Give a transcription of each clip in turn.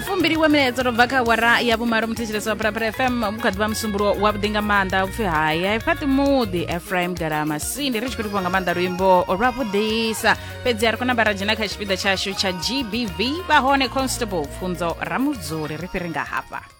fumbiriwe milaedza ro bva kha wara ya vhumalo muthetshelesi wa phalaphala fm mu kha ḓivha musumbulo wa vhuḓi nga maanḓa upfi haya ifhaṱi muḓi efraim galama sindi ri tshi khou livhiwa nga maanḓa luimbo lwa vhuḓisa fhedzi a ri kona vhara dzhena kha tshipiḓa tshashu tsha gbv vha hone constable pfunzo ramudzuli ri fhiri nga hafha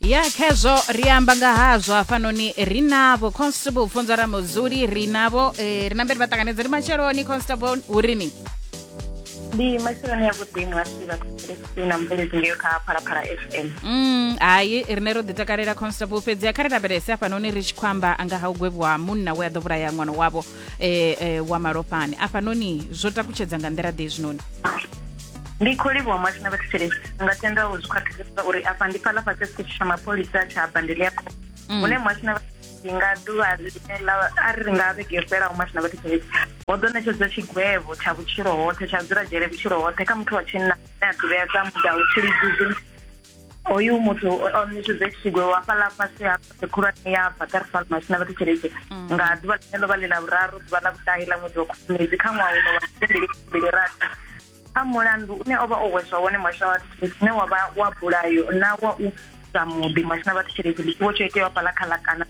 ya khezwo ri amba nga hazwo hafhanoni ri navho constable funza ra muzuli ri navho um eh, ri namberi vha ṱanganedza ndi matsheloni constable hu ri ni ndi matsheloni ya vhuḓi ngasi vhakristau na mubveledzi ngeyo kha phalaphala f m mm, hayi rine ro ḓitakalela constable fhedzi a kha ri lavhelese afhanoni ri tshi khou amba nga ha u gwevhiwa munna we a ḓo vhulaya ṅwana wavho um wa malofhani afhanoni zwo takutshedza nga nḓila ḓe zwinoni Ndi khou livhuwa muhasho na vhathetshelesi nga tenda u zwi khwaṱhisedza uri afha ndi fhaḽa fhasi ya tsha mapholisa tsha Bandeliaco mm. hune muhasho na vhathetshelesi nga ḓuvha a ri nga vhege yo fhelaho muhasho na vhathetshelesi ho ḓo ṋetshedzwa tshigwevho tsha vhutshilo hoṱhe tsha dzula dzhele vhutshilo hoṱhe kha muthu wa tshinna ane a ḓivhea sa mudau tshilidzuzi oyu muthu o ṋetshedza tshigwe wa fhaḽa fhasi ha khulwane ya bakar falmas na vhathu tshelede mm. nga ḓuvha ḽine ḽo vha ḽi ḽa vhuraru ḓuvha ḽa vhuṱahi ḽa ṅwedzi wa khubvumedzi kha ṅwaha uno wa mbili rathi kha mulandu une o vha o hweswa wone muhasho wa vhathu tshelede une wa vha wa bulayo na wa u sa muḓi muhasho na vhathu tshelede ḽitsiwo tsho itewa fhaḽa kha ḽa kana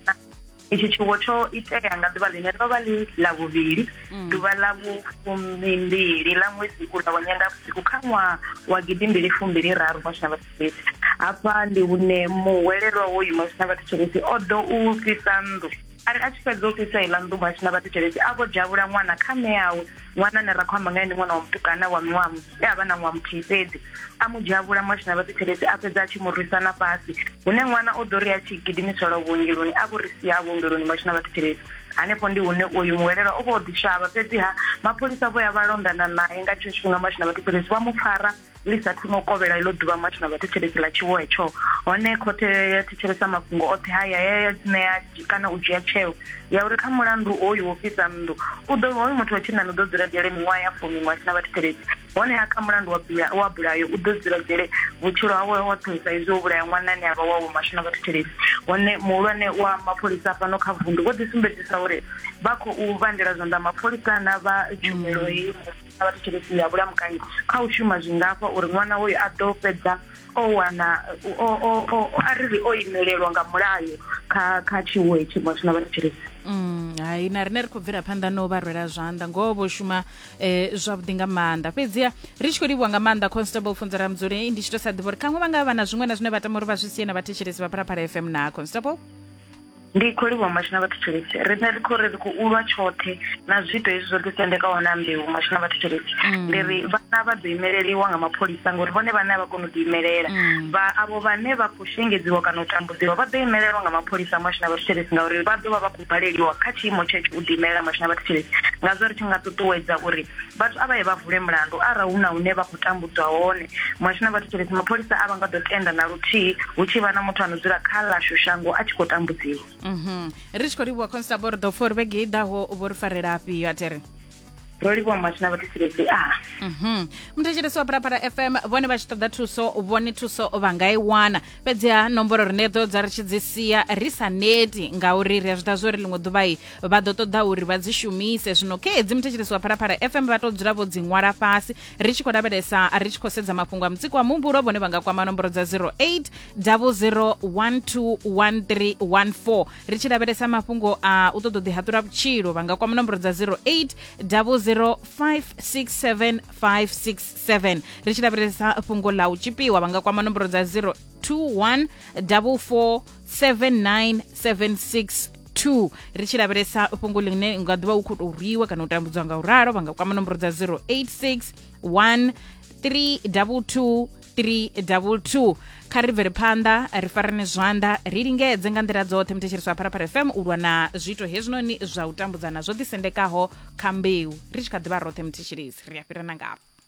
itshi tshiwo tsho itea nga ḓuvha ḽine ḽo vha ḽi ḽa vhuvhili mm. ḓuvha ḽa vhufumimbili ḽa ṅwedzi ula wa nyendavhusiku kha ṅwaha wa gidimbili fumbili raru mosina vhathu fhedzi hafha ndi hune muhwelelwa woyu mosina vhathu tshelesi o ḓo u fhisa nnḓu ari a tshi fhedza u fhisa iḽa nnḓu mosina vhathu tshelesi a vho dzhavhula ṅwana kha ṋeawe ṅwana ane ra khou amba nga ndi ṅwana wa mutukana wa miṅwaha e a vha na ṅwaha muthihi fhedzi a mu dzhia vhula mwashina vha ṱuthelezi a fhedza a tshi mu rwisa na fhasi hune ṅwana o ḓo ri a tshi gidimiselwa vhuongeloni a vho ri sia vhuongeloni mwashina vha ṱuthelezi hanefho ndi hune uyu muhwelelwa o vha o ḓishavha fhedziha mapholisa vho ya vha londana nae nga tshetsho tshifhinga mwashina vha ṱuthelezi vha mu pfara ḽi sa thoma u kovhela iḽo ḓuvha much na vhathetshelesi ḽa tshiwo hetsho hone khothe ya thetshelesa mafhungo oṱhe haya ya ya ṋea kana u dzhia tsheo ya uri kha mulandu oyu wo fhisa nnḓu u ḓo hoyu muthu wa tshinnani u ḓo dzula dzhele miṅwaha ya fumi miṅwaha sina vhathetshelesi hone ha kha mulandu wa bula wa bulayo u ḓo dzula dzhele vhutshilo hawe wa thusa izwi wo vhulaya ṅwana ane avha wawe mashu na vhathetshelesi hone muhulwane wa mapholisa fhano kha vundu vho ḓi sumbedzisa uri vha khou vhandela zwanḓa mapholisa na vha tshumelo hei na vhathu tsheletsini ya vhulamukanyi kha u shuma zwi ngafha uri ṅwana hoyo a ḓo fhedza o wana a ri ri o imelelwa nga mulayo kha kha tshiwo hetshi muthu na vhathu tsheletsini Mm, hai na rine ri khou bvela phanḓa no vha rwela zwanḓa ngoho vho shuma eh, zwavhuḓi nga maanḓa fhedziha ri tshi khou livhuwa nga maanḓa constable funzela mudzuli ndi tshi to sa ḓivha uri khaṅwe vha nga vha na zwiṅwe na zwine vha tama uri vha zwi sie na vhathetshelesi vha phalaphala fm na constable ndi khou livhuwa mashina vhathu tshelesi riṋe ri khou ri ri khou ulwa tshoṱhe na zwiito hezwi zwo ḓisendekaho na mbeu mashina vhathu tshelesi mm. ndi ri vhana vha ḓo imeleliwa nga mapholisa ngori vhone vhane a vha koni u ḓiimelela mm. vha avho vhane vha khou shengedziwa kana u tambudziwa vha ḓo imelelwa nga mapholisa mashina vhathu tshelesi ngauri vha ḓo vha vha khou baleliwa kha tshiimo tshetsho u ḓiimelela mashina vhathu tshelesi ngazwo ri tshi nga ṱuṱuwedza uri vhathu a vha ye vha vule mulandu arali hu na hune vha khou tambudzwa hone muhasho na vhathetshelesi mapholisa a vha nga ḓo tenda na luthihi hu tshi vha na muthu ano dzula kha lashu shango a tshi khou tambudziwa mhm. ri tshi khou livhuwa constable ri ḓo pfa uri vhege i ḓaho vho ri farela afhio a tere ro livhuwa muhasho na vhathetshelesi a mhm. muthetshelesi wa phalaphala fm vhone vha tshi ṱoḓa thuso vhone thuso vha nga i wana fhedziha nomboro rine ḓo dza ri tshi dzi sia ri sa neti ngauri ri a zwi ḓa zwo ri ḽiṅwe ḓuvha i vha ḓo ṱoḓa uri vha dzi shumise zwino khe hedzi muthetshelesi wa phalaphala fm vha tou dzula vho dzi ṅwala fhasi ri tshi khou lavhelesa ri tshi khou sedza mafhungo a mutsiko wa muhumbulo vhone vha nga kwama nomboro dza 08 00121314 ri tshi lavhelesa mafhungo a u ṱoḓa u ḓihaṱula vhutshilo vha nga kwama nomboro dza 08 00567567 ri tshi lavhelesa fhungo ḽa u tshipiwa vha nga kwama nomboro dza 021 44 79762 ri tshi lavhelesa fhungo ḽine nga ḓuvha u khou tou rwiwa kana u tambudzwa nga u ralo vha nga kwama nomboro dza 086 1 322 322 kha ri bvele phanḓa ri farane zwanḓa ri lingedze nga nḓila dzoṱhe muthetshelesi wa pharapara fm u lwa na zwiito hezwinoni zwa u tambudzana zwo ḓisendekaho kha mbeu ri tshi kha ḓivha roṱhe muthetshelesi ri a fhirana ngafho